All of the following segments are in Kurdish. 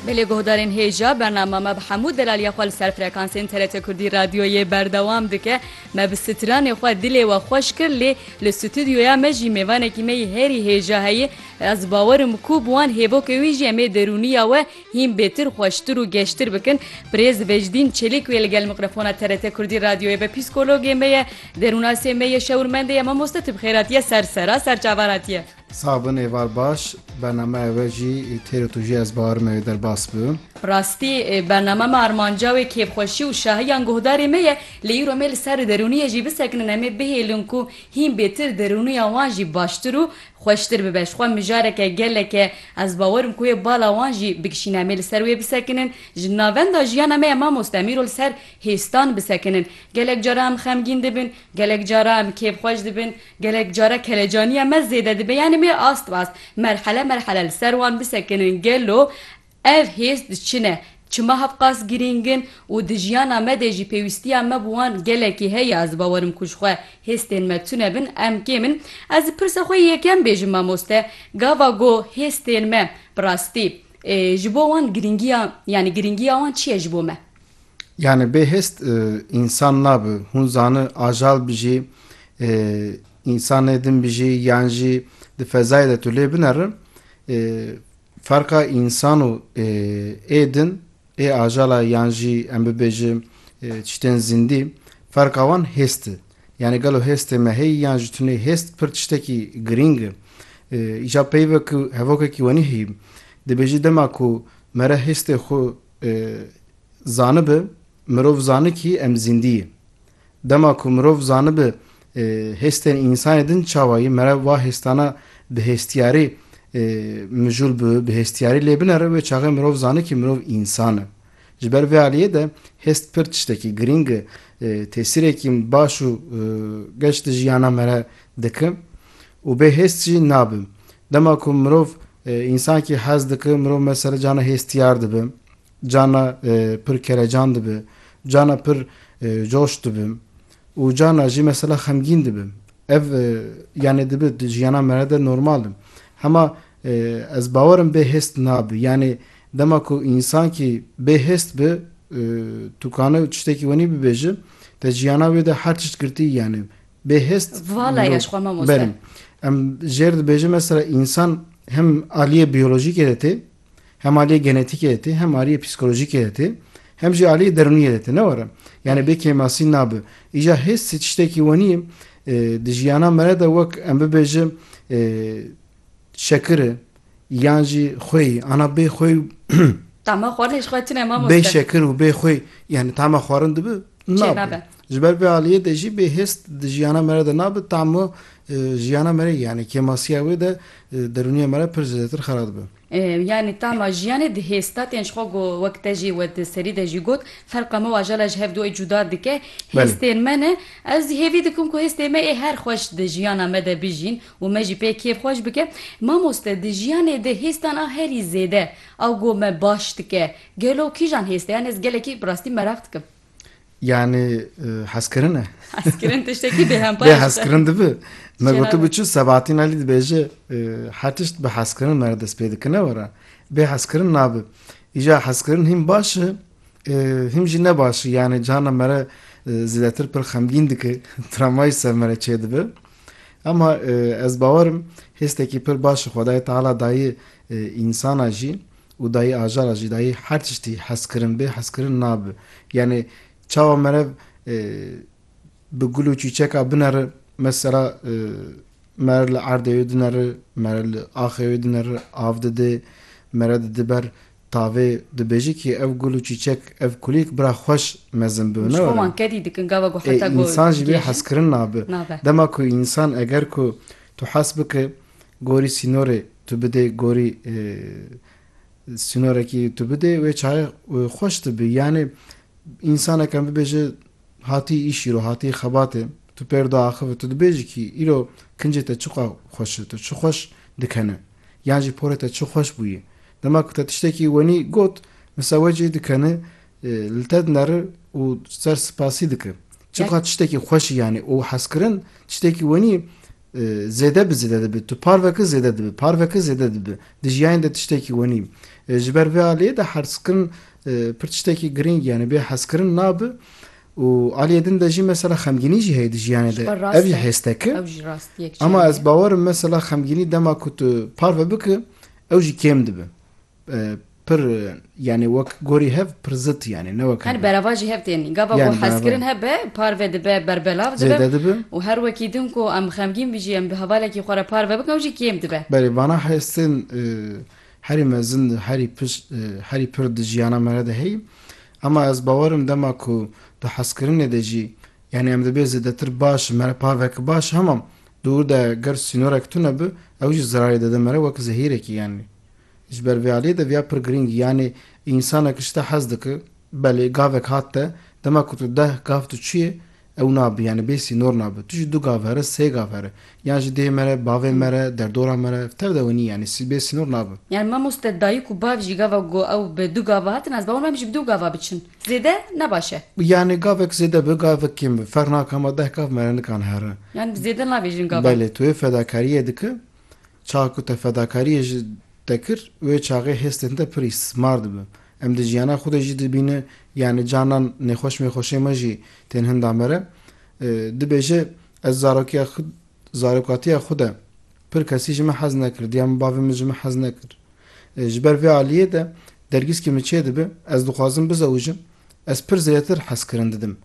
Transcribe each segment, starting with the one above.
Bi lê guhdarên hêja bernama me bi hemû delaliya xwe li ser frekansên TRT Kurdî radyoyê berdewam dike. Me bi stranê xwe dilê we xweş kir lê li stûdyoya me jî mêvanekî me yî herî hêja heye. Ez bawerim ku bi wan hêvokê wî jî em ê derûniya we hîn bêtir xweştir û geştir bikin. Birêz Vejdîn Çelîk wê li gel mikrofona TRT Kurdî radyoyê be psîkologê me ye, derûnasê me ye, şewirmendê ye, mamoste tibxêratiye ser sera ser çavan hatiye. Sax bin êvar baş bernameya we jî têro tu jî ez bawerim ew ê derbas bi. Bi rastî bername me armanca wê kêfxweşî û şahiyan guhdarê me ye lê îro me li ser derûniyê jî bisekinin em ê bihêlin ku hîn bêtir derûniya wan jî baştir û xweştir bibe ji xwe mijareke gelek e ez bawerim ku wê bala wan jî bikişîne em ê li ser wê bisekinin ji navenda jiyana me ye mamoste em îro li ser hêstan bisekinin gelek cara em xemgîn dibin gelek cara em kêfxweş dibin Gelek care kelecaniya me zêde dibe yanî me ast ast merhele merhele li ser wan bisekinin gelo ev hêz di çi ne? Çima hevqas girîng in û di jiyana me de jî pêwîstiya me bi wan gelekî heye ez bawerim ku ji xwe hêstên me tune bin em kêm in ez di pirsa xwe yekem bêjim mamoste gava go hêstên me bi rastî ji bo wan girîngiya yanî girîngiya wan çi ye ji bo me? Yani bê hêst însan nabi. Hûn zani ajal bijî, însanê din bijî yan jî di fezayê de tu lê bineri ferqa însan û ê din, ê ajala yan jî em bibêjin tiştên zîndî ferqa wan hêst i. Yani gelo hêstê me heyî yan ji tu nê hêst pir tiştekî girîng i. Îja peyve ku hevokekî wenî heyî dibêjî dema ku mere hêstê xwe Zanibi, mirov zani kî em zîndî yî. Dema ku mirov zanibi hêstên însanê din çawa yî, mere wa hêstana bi hêstiyarî mijûl bi bi hêstiyarî lê binere wê çaxê mirov zani kî mirov însan e. Ji ber vê aliyê de hêst pir tiştekî girîng e, tesîrekî baş û geş di jiyana me re dike û bê hêst jî nabe. Dema ku mirov însankî hez dike, mirov mesela cana hêstiyar dibe. Carna pir kerecan dibi, carna pir coş dibim û carna jî mesela xemgîn dibim. Ev yanê dibi di jiyana me re de normal in. Hema ez bawer im bêhêst nabi. Yanê dema ku însankî bêhêst bi tu kane tiştekî wenî bibêji te jiyana wê de her tişt girtî yanê bêhêst mirov berî. Em jêr dibêjin mesela însan hem aliyê biyolojîkê de tê Hem aliyê genetîkê de tê, hem aliyê psîkolojîkê de tê, hem jî aliyê derûniyê de tê. Ne were? Yanî bê kêmasî nabe. Îja hês ji tiştekî wenî ye. Di jiyana me re de wek em bibêje şekir e yan jî xweyî. Ana bê xweyî û Tama xwarin jî xwe tune mamoste. Bê şekir û bê xweyî yanî tama xwarin dibe? Nabe. Ji ber vê aliyê de jî bê hêst di jiyana me re de nabe, tamu jiyana me re yanî kêmasiya wê de derûniya me re pir zêdetir xera dibe. Yanî tama jiyanê di hêst de tên ji xwe go wek te jî we di serî de jî got ferqa me waja la ji hev duyê cuda dike. Hêstên me ne. Ez jî hêvî dikim ku hêstê me ê her xweş di jiyana me de bijîn û me jî pê kêf xweş bike. Mamoste di jiyanê de hêstan a herî zêde a go me baş dike gelo kîjan hêst e? Yanî ez gelekî bi rastî meraq dikim. Yani hezkirin e. Hezkirin tiştekî bêhempa ye. Bê hezkirin dibi. Me gotu bi çi Sebahattin Alî dibêje her tişt bi hezkirin me re dest pê dikine were. Bê hezkirin nabi. Îja hezkirin hîm baş e hîm jî ne baş e. Yani cihana me re zêdetir pir xemgîn dike. Tramayî ser me re çê dibe. Ama ez bawerim hêstekî pir baş xwedayê teala dayê însana jî Û dayî ajara jî dayî her tiştî hezkirin bê hezkirin nabe. Yanî çawa merev bi gul û çîçeka bineri mesela mere li erdê wê dineri, mere li axê wê dineri, av didê, mere didi ber tavê dibêjî kî ev gul û çîçek ev kulîlk bira xweş mezin bi. Ji bo wan kedî dikin gava ku heta ku. Însan jî bê hezkirin nabe. Dema ku însan eger ku tu hes bike. gorî sînorê tu bidê gorî sînorekî tu bidê wê çayê xweş dibi yanî însaneke bibêje hatî îşî ro hatî xebatê tu pêro de axive tu dibêjî kî îro kincê te çiqas xweş e tu çi xweş dikene yan jî porê te çi xweş bûye dema ku te tiştekî wenî got misa we cî dikene Li te dinere û ser spasî dike. Çiqas tiştekî xweş î yanî û hezkirin tiştekî wenî zêde bi zêde dibe. Tu par veke zêde dibe, par veke zêde dibe. Di jiyayên de tiştekî wenî. Ji ber vê aliyê de hezkirin pir tiştekî girîng yanî bê hezkirin nabe û aliyê din de jî mesela xemgînî jî heye di jiyayê de. Ev jî hêsteke. Ema ez bawer im mesela xemgînî dema ku tu parve bike ew jî kêm dibe. Pir yanê wek gorî hev pir zit yanê ne wek. Hani berava jî hev tên. Gava ku hezkirin hebe parve dibe berbelav dibe. Zêde dibe. Û her wekî din ku em xemgîn bijî em bi hevalekî xwe re parve bikin ew jî kêm dibe. Belê vana hestên herî mezin di herî pir herî pir di jiyana me re de heyî. Ema ez bawer im dema ku di hezkirinê de jî yanê em dibê zêdetir baş me re parveke baş hema dûr de ger sînorek tune bi ew jî zerarê dide me re wek zehîrekî yanê. Ji ber vê aliyê de viya pir girîng yanê însanek ji te hez dike. Belê gavek hat te, dema ku tu deh gav tu çiyê ew nabe yanê bê sînor nabe. Tu jî du gav here, sê gav here. Yan ji dê mere, bavê mere, derdora mere tev de wenî yanê sî bê sînor nabe. Yan mamoste dayik û bav jî gava ku ew bi du gav hatin ez bawer me em jî bi du gav biçin zêde ne baş e. Yanê gavek zêde be gavek kêm be ferq nake hema deh gav mere nikan here. Yan bi zêde navêjin gav e. Belê tu vê fedakariyê dike Çax ku te fedakariyê ji te kir, wê çaxê hêstên te pirî smar dibe. Em di jiyana xwe de jî dibîne yanî canan nêxweş mêxweşê me jî tên hinda me re. Dibêje, Ez zarokiya xwe zarokatiya xwe de pir kesî ji min hez nekir, diya min bavê min ji min hez nekir. Ji ber vê aliyê de dergîskî min çê dibe, ez dixwazim bizewijim, ez pir zêdetir hezkirin didim.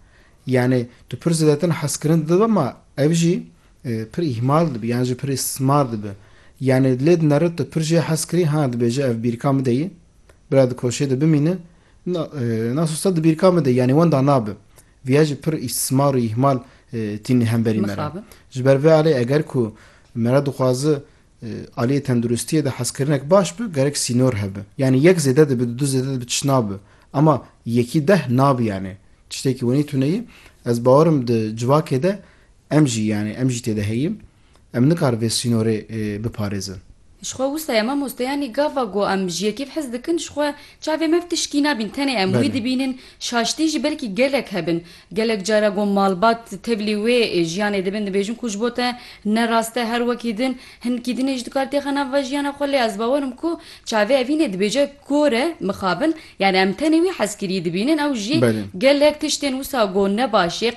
Yanî tu pir zêdetin hezkirin didim ma ev jî Pir îhmal dibi yan jî pir îstîsmar dibi. Yanî lê di neret de pir jê hez kirî ha dibêje ev bîrka min de yê. Bira dikoşê de bimîne. Na na sosta di bîrka min de yanî wenda nabi. Viya jî pir îstîsmar û îhmal tînî hemberî me re. Ji ber vê alê eger ku me re dixwaze aliyê tenduristiyê de hezkirinek baş bi gerek sînor hebe. Yanî yek zêde dibi di du zêde dibi tişt nabi. Ema yekî deh nabi yanî tiştê ki wenî tune yê. Ez bawer im di civakê de Em jî yanî em jî têde heyîn. Em nikar vê sînorê biparêzin. Ji xwe wisa ye mamoste yanî gava ku em ji yekê hez dikin ji xwe çavê me tişkî nabîn tenê em wî dibînin şaştî jî belkî gelek hebin gelek cara ku malbat tevlî wê jiyanê dibin dibêjin ku ji bo te ne rast e her wekî din hinkî dinê jî dikar têxe nav va jiyana xwe lê ez bawer im ku çavê evînê dibêje kore mixabin yanî em tenê wî hezkirî dibînin ew jî gelek tiştên wisa ku ne baş ê